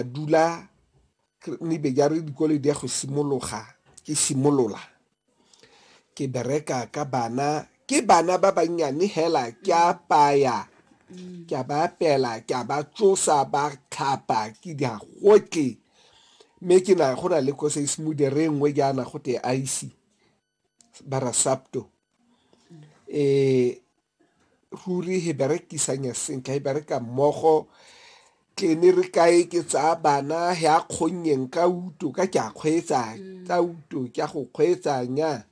dula nebe ja re dikole di ya go simologa ke simolola ke bereka ka bana ke bana ba bannyane hela ke a paya ke a ba apela ke a ba tsosa ba tlhapa ke di gotle mme ke na go na le ko se se modere nngwe jaana go te ice ba ra SAPTO um ruri he berekisanya sentle he bereka mmogo tlene re kae ke tsaya bana he a kgonnyeng ka uto ka ke a kgweetsa mm. ka uto ke a go kgweetsanya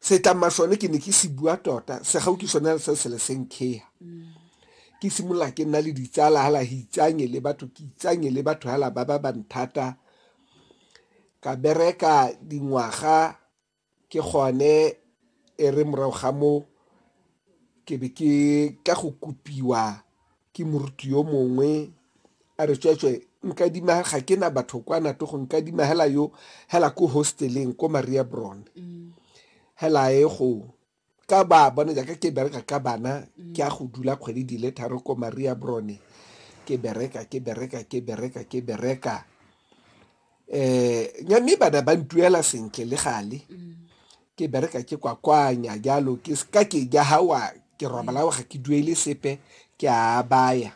setlama sone ke ne ke se bua tota se gau ke sone se se le senkheya mm. ke simolola ke nna le ditsala hala hitsanye le batho ke itsanye le batho hala ba ba ba nthata Ka bereka dingwaga ke gone e re morago ga moo ke be ke tla go kopiwa ke moruti yo mongwe a re tsweetswe nkadima ga ke na batho kwa nato go nkadima hela yo hela ko hosteleng ko maria bron hela e go ka ba bone jaaka ke bereka ka bana ke a go dula kgwedi di le tharo ko maria brone ke bereka ke bereka ke bereka ke bereka eh nya mme bana ba ntuela sentle le gale ke bereka ke kwakwanya jalo ke ka ke ja hawa ke robala ga ke duele sepe ke a baya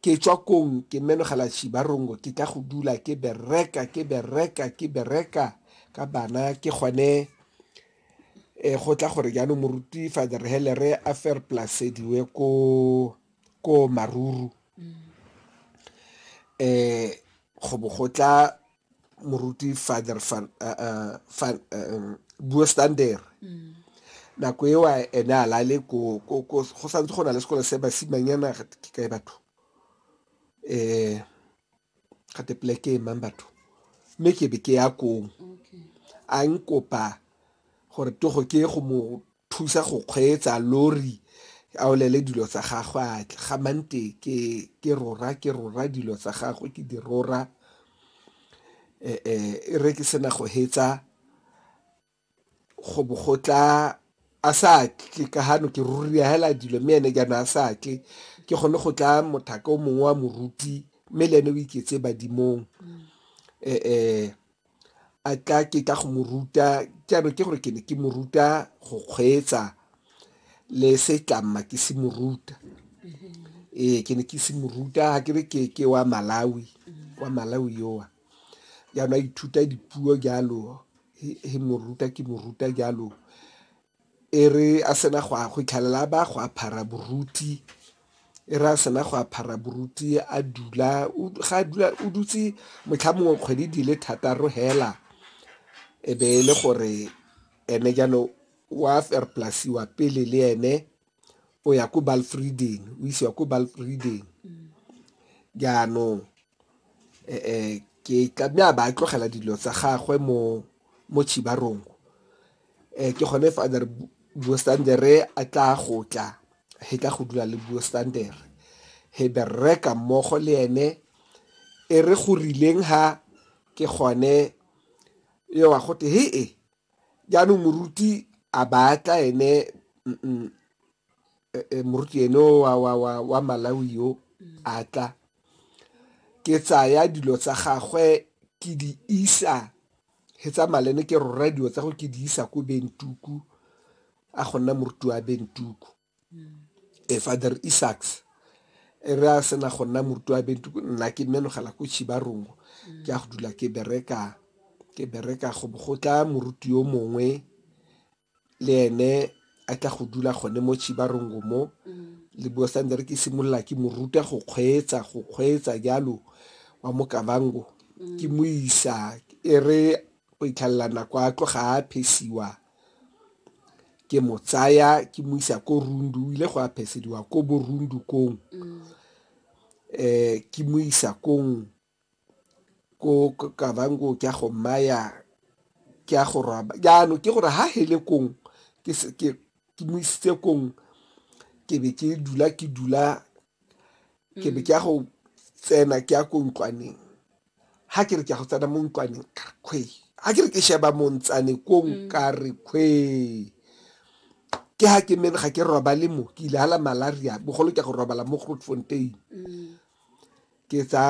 Ke tšwa kong, ke menogela Chibarongo, ke tla go dula ke bereka, ke bereka, ke bereka ka bana, ke gone eh, go tla gore jaanong moruti Father Helere a ferplasediwe ko, ko Maruru. Eh, go bo go tla moruti father fan uh, uh, fan um, buo standere mm. nako eo ene a lale go santse go na le sekolo se basimanyana ke kae batho um gate pleke e mang batho mme ke be ke ya kong a nkopa gore togo ke go mo thusa go kgweetsa lori a olele dilo tsa gagwe a tle ga mante ke ke rora ke rora dilo tsa gagwe ke di rora eh, eh, e re ke sena go hetsa go bogotla a sa tle ka gano ke ruria hela dilo mme ene jaana a sa tle ke gone go tla mothaka o mongwe wa moruti mme le ene o iketse badimong um a tla ke tla go mo ruta jaanong ke gore ke ne ke mo ruta go kgweetsa le setlamma ke se mo ruta ee ke ne ke se mo ruta ga ke re ke ke wa malawi wa malawi yowa jaanong a ithuta dipuo jalo he mo ruta ke mo ruta jalo E re a sena go a go itlhalela a ba go aphara boruti e re a sena go aphara boruti a dula ga a dula o dutse motlha mongwe kgwedi di le thataro hela e be e le gore ene jaanong wa ferplasiwa pele le ene o ya ko balfriden o isiwa ko balfriden jaanong um ke tla mme a ba tlogela dilo tsa gagwe mo mo chibarongo um ke gone fa a re buo standere a tla go tla he tla go dula le buo standere he bereka mmogo le ene e re go rileng ha ke gone yo wa gote he e jaanong moruti a batla ene e, e, moruti ene wa, wa, wa, wa malawi yo a tla ke tsaya dilo tsa gagwe ke di isa he tsa malene ke rora dilo tsa go ke di isa ko bentuku a go nna moruti wa bentuku e Father Isaacs e re a sena go nna moruti wa bentu nna ke menogela ko Chibarongo ke a go dula ke bereka ke bereka go go tla moruti yo mongwe le ene a tla go dula gone mo Chibarongo mo le bua sa ke simolola ke mo ruta go kgweetsa go kgweetsa jalo wa mo kabango ke mo isa e re go itlhalela nako a tloga a phesiwa ke mo tsaya ke mo isa ko rundu ile go aphesediwa ko bo rundu kong um ke mo isa kong ko kabango ke a go maya ke a go roba jaanong ke gore ha hele kong ke mo isitse kong ke be ke dula ke dula ke be ke ya go tsena ke ya ko ntlwaneng ha ke re ke a go tsena mo ntlwaneng kare kgwe ha ke re ke sheba montsane ko mm. nkare kgwe ke ha ke mene ga ke robale mo ke ile hala malaria bogolo ke go robala mo grootfontein mm. ke tsaya